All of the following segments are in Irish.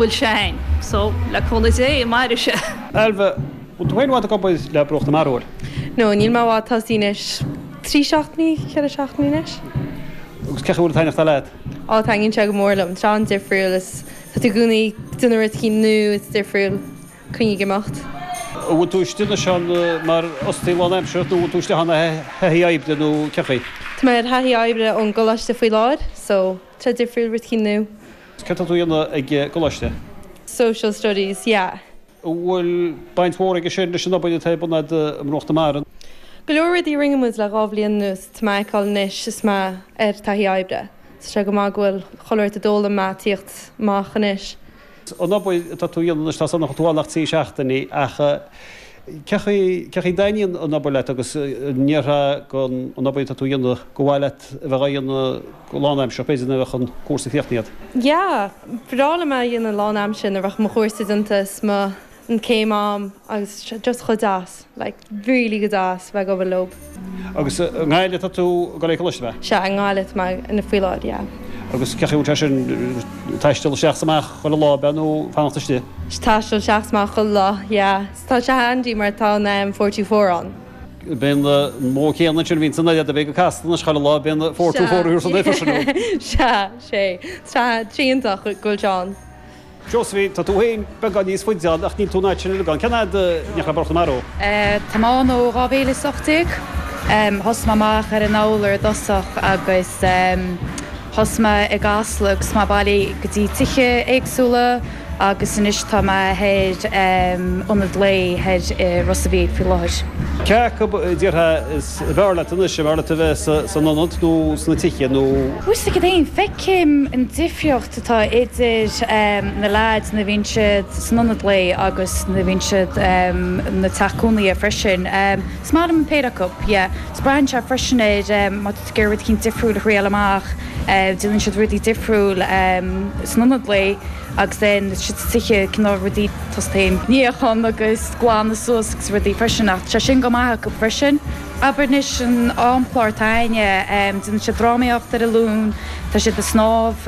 bhfuil sé féin. So, le cúnamh Dé, mairfidh sé. Ailbhe, Bhfuil tú féin i bhfad ag obair le Bruach na Mara? No, níl mé i bhfad, tá sí anois trí seachtainí, ceithre seachtainí anois. Agus cén chaoi a dtaitníonn sé leat? Á, taitníonn sé go mór liom. Tá sé an-difriúil is tá tú i gcónaí déanamh rud eicínt nua is difriúil, cuing ag imeacht. An bhfuil tú istigh anois ann mar fhostaí lánaimseartha nó an bhfuil tú isteach ann ar thaithí oibre nó cén chaoi? Tá mé ar thaithí oibre ón gcoláiste faoi láthair, so, tá sé difriúil, rud eicínt nua. Céard tá tú a dhéanamh ag an gcoláiste? Social Studies, yeah. An bhfuil baint mhór aige sin anois leis an obair atá ag ionad Bhruach na Mara? Go leor rudaí a rinne muid le dhá bhliain anuas, tá mé a fheiceáil anois is mé ar taithí oibre. Tá sé go maith go bhfuil chuile rud a d'fhoghlaim mé ag tíocht amach anois. An obair atá tú a dhéanamh anois, tá a fhios a'm nach bhfuil tú ann ach trí seachtainí ach Cén chaoi a dtaitníonn an obair leat agus an ndéarfá gurb í an obair atá tú a dhéanamh gur mhaith leat a bheith á dhéanamh go lánaimseartha, b'fhéidir nuair a bheadh an cúrsa críochnaithe a'd? Yeah, bhreá liom é a dhéanamh lánaimseartha nuair a bheadh mo chúrsa déanta is an chéim a'm agus just chomh deas, like really go deas bheith ag obair leob. Agus i nGaillimh atá tú ag dul ar coláiste, hea? Sea, i nGaillimh atá mé faoi láthair, yeah. Agus cén chaoi a bhfuil sé sin, taisteal isteach 's amach chuile lá, b'ea, nó fanacht istigh? Sea, taisteal isteach 's amach chuile lá, yeah. 'S tá sé handy mar tá an em four-two-four ann. Bíonn an modh céanna ansin, bhíonn san airde, bheadh ag casadh anois chuile lá, bíonn four-two-four ar siúl san oifig, sin é. Sea, sea. 'S tá, tá, iontach go bhfuil sé ann. Seosaimhín, Tá tú féin beagán níos faide ann ach níl tú in áit sin i mbeagán. Cén fhad? Ní raibh orthu marú. Táim ann ó 2018. Thosaigh mé amach ar an bhFómhar i dtosach agus thosaigh mé i gCasla agus mé ag bailiú go dtí tithe éagsúla agus anois tá mé ar ionad lae thoir i Ros a' Mhíl faoi láthair. Cé acu a déarfá is fearr leat anois, an bhfearr leat a bheith san ionad nó sna tithe nó. Uisce féin, feic. Feicim an difríocht atá idir na leaids nuair a bhíonn siad san ionad lae agus nuair a bhíonn siad sa teach cónaithe freisin. Is maith liom an péire acu, yeah. Is braitheann sé freisin ar má tú ag iarraidh rud éigin difriúil a thriail amach. Déanann siad rudaí difriúil san ionad lae agus then is sna tithe cineál rudaí tosta féin, níochán agus glanadh suas agus rudaí freisin ach tá sé sin go maith acu freisin. Abair anois an amchlár atá againne, déanann siad drámaíocht ar an Luan, tá siad ag snámh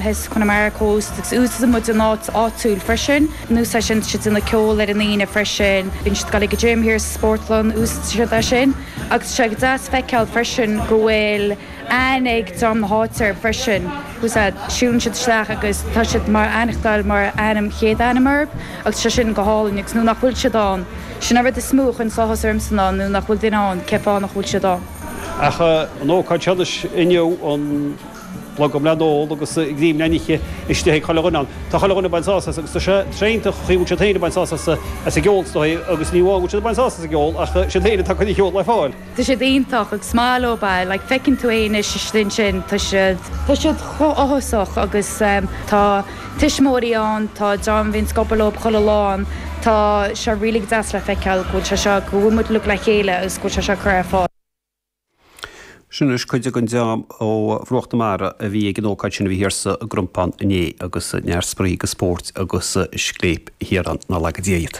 thíos i Connemara Coast agus úsaideann muid an áit áitiúil freisin, anuas ar sin tá siad ag déanamh ceol ar an Aoine freisin, bíonn siad ag dul ag an gym thíos sa spórtlann, úsaideann siad é sin agus tá sé go deas feiceáil freisin go bhfuil aithne ag dream na háite orthu freisin, úsáid, siúlann siad isteach agus tá siad ag aithneachtáil mar ainm, chéad ainm orthu agus tá sé sin go hálainn agus nuair nach bhfuil siad ann, Sin an rud is mó a chuireann sáthas orm ann nó nach bhfuil duine ann cén fáth nach bhfuil siad ann. Ach an ócáid seo anois inniu, an blogam le n-ól agus greim le n-ithe istigh ag chuile dhuine ann. Tá chuile dhuine ag baint sáthas as agus tá sé t-réantaach chaoi a bhfuil siad féin ag baint sáthas as an gceol is dóigh agus ní amháin go bhfuil siad ag baint sáthas as an gceol ach siad féin ag tacú le ceol le fáil. Tá siad iontach, ag smile oh bah, like feiceann tú é anois istigh ansin, tá siad, tá siad chomh h-áthasach agus tá tuismeoirí ann, tá dream a bhíonn ag obair leo chuile lá ann, tá sé really go deas le feiceáil go bhfuil sé seo, go bhfuil muid uilig le chéile agus go bhfuil sé seo ag cur ar fáil. Sin anois cuid den dream ó Bhruach na Mara a bhí ag an ócáid sin a bhí thiar sa gCrompán inné agus neart spraoi agus spóirt agus scléip thiar ann. Nár laga Dia iad.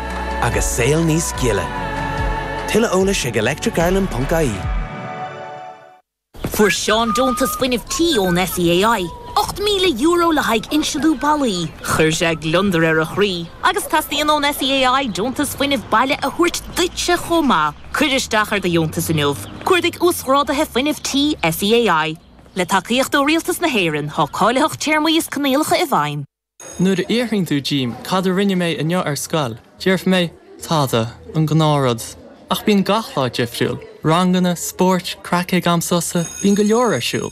agus saol níos gile. Tuilleadh eolais ag electric-ireland.ie. Fuair Seán Deontas Fuinnimh Tí ón SEAI, €8,000 le haghaidh insealú ballaí. Chuir sé gliondar ar a chroí agus teastaíonn ón SEAI deontas fuinnimh baile a thabhairt duitse chomh maith. Cuir isteach ar do dheontas inniu. Cuardaigh Uasghrádaithe Fuinnimh Tí SEAI. Le tacaíocht ó Rialtas na hÉireann, tá cáilitheacht téarmaí is coinníollacha i bhfeidhm. Nuair a fhiafraíonn tú díom cad a rinne mé inniu ar scoil, déarfaidh mé, tada, an gnáthrud. Ach bíonn gach lá difriúil. Ranganna, spórt, craic ag am sosa, bíonn go leor ar siúl.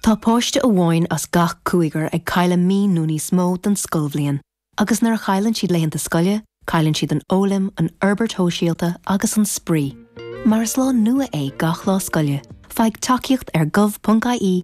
Tá páiste amháin as gach cúigear ag cailleadh mí nó níos mó den scoilbhliain agus nuair a chailleann siad laethanta scoile, cailleann siad an fhoghlaim, an fhorbairt shóisialta agus an spraoi. Mar is lá nua é gach lá scoile, faigh tacaíocht ar gov.ie